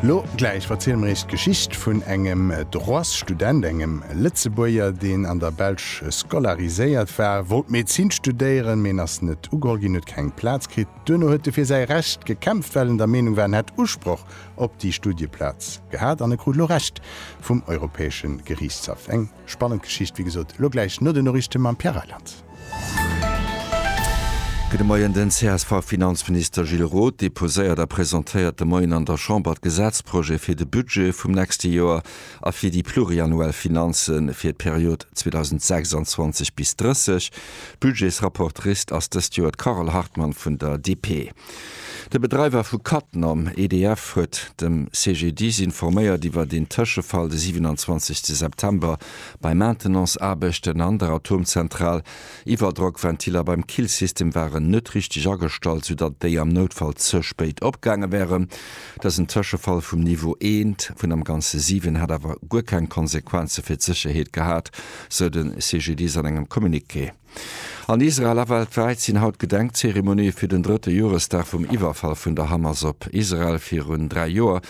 Lo gläich verziele mer iech d'Geschicht vun engem Droitsstudent, engem Lëtzebuerger, deen an der Belsch scolariséiert war, wollt Medezin studéieren, mee en ass net ugeholl ginn, huet keng Plaz kritt. Duerno huet e fir säi Recht gekämpft, well en der Meenung war, en hätt Usproch op déi Studieplaz gehat, an e krut lo Recht vum Europäesche Geriichtshaff. Eng. Spannend Geschicht, wéi gesot. Elo gläich no den Noriichte mam Pierre Reyland. Gudde Moien. Den CSV-Finanzminister Gilles Roth deposéiert a presentéiert de Moien an der Chamber d'Gesetzprojet fir de Budget vum nächste Joer a fir déi pluriannuell Finanze fir d'Period 2026 bis 30. Budgetsrapportrice ass dëst Joer d'Carole Hartmann vun der DP. De Bedreiwer vu Cattenom, EDF, huet dem CGDIS informéiert iwwert een Tëschefall de 27 September bei Maintenance-Aarbechten an der Atomzentral. Iwwerdrockventiller beim Killsystem waren net richteg agestallt, soudatt déi am Noutfall ze spéit opgaange wären. Dësen Tëschefall vum Niveau 1 vun am Ganze 7 hätt awer guer keng Konsequenze fir d'Sécherheet gehat, sou de CGDIS an engem Communiqué. An Israel a weltwäit sinn haut Gedenkzeremonië fir den drëtte Joresdag vum Iwwerfall vun der Hamas op Israel. Virun dräi Joer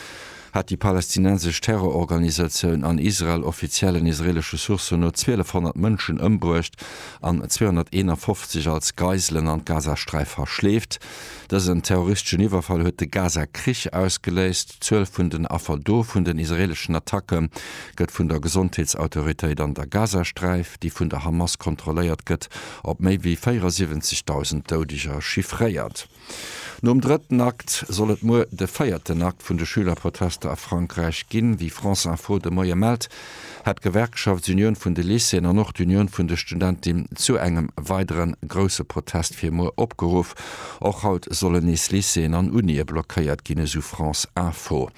hat déi palästinensesch Terrororganisatioun an Israel offiziellen israelesche Sourcen no 1.200 Mënschen ëmbruecht an 251 als Geiselen an d'Gazasträif verschleeft. Dësen terroristeschen Iwwerfall huet de Gaza-Krich ausgeléist. D'Zuel vun den Affer do vun den israeeleschen Attacke gëtt vun der Gesondheetsautoritéit an der Gazasträif, déi vun der Hamas kontrolléiert gëtt, op méi wéi 74.000 Doudeger chiffréiert. Nom drëtten Akt soll et muer de véierten Akt vun de Schülerprotester a Frankräich ginn. Wéi France Info de Moie mellt, hat d'Gewerkschaft, d'Unioun vun de Lycéeën an och d'Unioun vun de Studentim zu engem weidere grousse Protest fir muer opgeruff. Och haut sollen nees Lycéeën an Unië blockéiert ginn, esou France Info.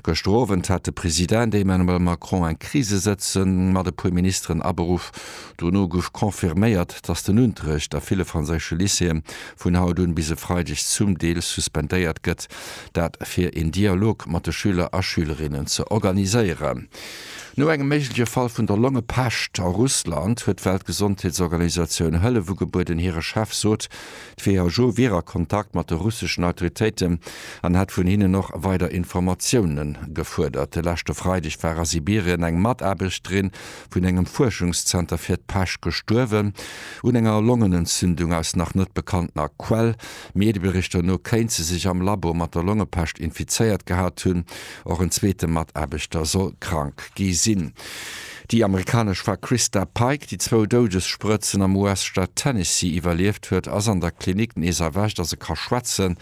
Gëschter Owend hat de President Emmanuel Macron eng Krisesëtzung mat e puer Ministeren aberuff. Dono gouf confirméiert, datt den Unterrecht a ville franséische Lycéeë vun haut un bis e Freideg zum Deel suspendéiert gëtt, dat fir een Dialog mat de Schüler a Schülerinnen ze organiséieren. No engem méigleche Fall vun der Longepescht a Russland huet d'Weltgesondheetsorganisatioun Hëllef ugebueden. Hire Chef sot, d'WHO wier a Kontakt mat de russeschen Autoritéiten an hätt vun hinnen och weider Informatioune gefuerdert. De leschte Freideg war a Sibirien eng Mataarbechterin vun engem Fuerschungszenter fir d'Pescht gestuerwen un enger Longenentzündung aus nach net bekanntner Quell. Medieberichter no kéint se sech am Labo mat der Longepescht infizéiert gehat hunn. Och en zweete Mataarbechter soll krank gi sinn. Déi amerikanesch Fra Christa Pike, déi zwou Doudessprëtzen am US-Staat Tennessee iwwerlieft huet, ass an der Klinik nees erwächt a se ka schwätzen.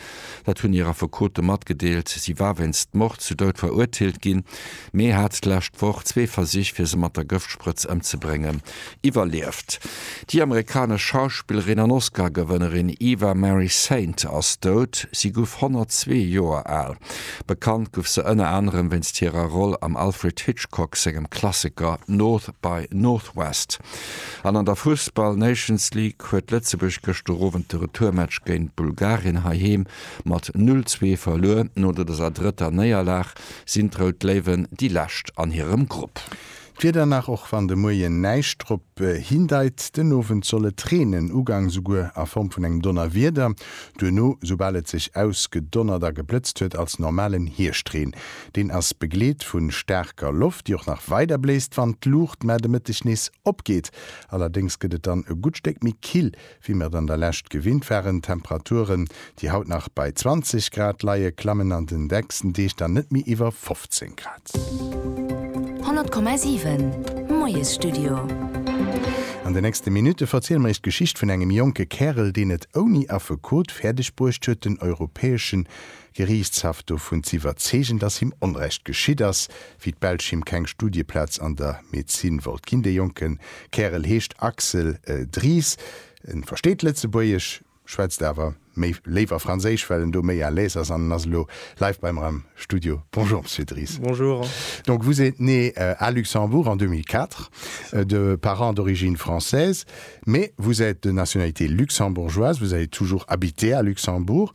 Dat hunn hir Affekote matgedeelt. Si war wéinst Mord zu Doud verurteelt ginn, mee hat d'lescht Woch zwee Versich, fir se mat der Gëftsprëtz ëmzebréngen, Iwwerlieft. Déi amerikanesch Schauspillerin an Oscar-Gewënnerin Eva Marie Saint ass dout. Si guff 102 Joer al. Bekannt guff se ënner anerem wéinst hirer Roll am Alfred Hitchcock sengem Klassiker North by Northwest. An an der Fussball Nations League huet Lëtzebuerg gëschter Owend de Retourmatch géint Bulgarien heiheem mat 0, 2 verluer. No dëser drëtter Néierlag sinn d'Rout Léiwen déi lescht an hirem Grupp. D'Wieder nach, och wann de Moien näischt drop hindeit, den Owend soll et reenen, ugangs souguer a Form vun engem Donnerwieder, duerno, soubal et sech ausgedonnert a geblëtzt huet, als normalen Hierscht-Reen. Deen ass begleet vu staarker Loft, déi och nach weider bléist, wann d'Luucht, mä de Mëtteg nees opgeet. Allerdéngs gëtt et dann e gutt Stéck méi kill Wéi mer et an der Lescht gewinnt waren, Temperaturen, déi haut nach bei 20 Grad leie, klammen an den nächsten Deeg dann net méi iwwer 15 Grad. 100,7 Moiesstudio. An den nächste Minutte verziele mer iech d'Geschicht vun engem jonke Kärel, deen et ouni Affekot fäerdeg bruecht huet, den europäeschen Geriichtshaff dovun z'iwwerzeegen, datt him Onrecht geschitt ass, wéi d'Belsch him keng Studieplaz an der Medezin wollt ginn. De jonke Kärel heescht Axel Dries, e versteet Lëtzebuergesch, schwätzt awer méi léiwer Franséisch, well en do méi à l'aise ass an en ass elo live bei mer am Studio. Bonjour Monsieur Dries. Bonjour. Donc vous êtes né à Luxembourg en 2004 de parents d'origine française mais vous êtes de nationalité luxembourgeoise, vous avez toujours habité à Luxembourg.